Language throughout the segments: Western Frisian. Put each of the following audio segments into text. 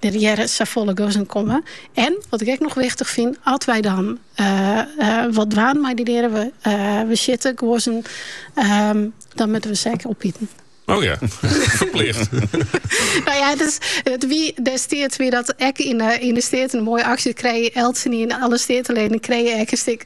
Der hearre net safolle guozzen te kommen. En, wat ik ek noch wichtich fyn, at wy dan wat dwaan mei dy dieren, we, we sjitte guozzen, ehm, dan moatte we se ek opite. Oh ja, verplicht. nou ja, dus, it wie destiids wie dat ek in, uh, yn de Steaten in moaie aksje krigen. Eltsen yn, alle Steateleden krigen in stik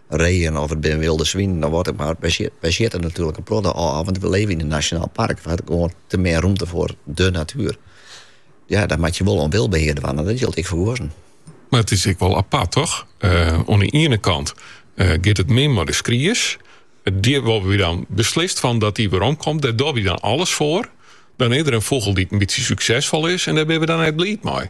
reeën of it binne wylde swinen of wat ek mar. Wy si- wy sjitte natuerlik in protte ôf, want wy libje yn in nasjonaal park hast gewoan te min rûmte foar de natuer. Ja, dan moatte je wol oan wyldbehear dwaan en dat jild ek foar guozzen. Mar it is ek wol apart, toch? Uh, oan de iene kant uh, giet it min mei de skries. Dy wolle wy dan beslist fan dat dy weromkomt, dêr dogge wy dan alles foar. Dan is der in fûgel dy't in bytsje suksesfol is en dêr binne we dan net bliid mei.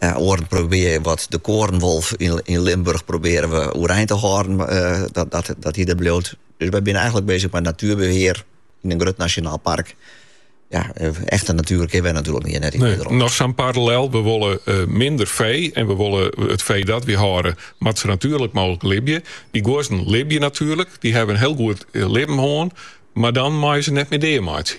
Oaren probearje we wat de korenwolf yn Limburch probearje we oerein te hâlden, dat hy der bliuwt. Dus wy binne eigenlik bezich mei natuerbehear yn in grut nasjonaal park. Ja, echte natuer kinne we natuerlik hjir net yn Nederlân. Noch sa'n parallel, we wolle minder fee en we wolle it fee dat we hâlde moat sa natuerlik mooglik libje. Dy guozzen libje natuerlik, dy hawwe in hiel goed libben hân, mar dan meie we se net mear dea meitsje.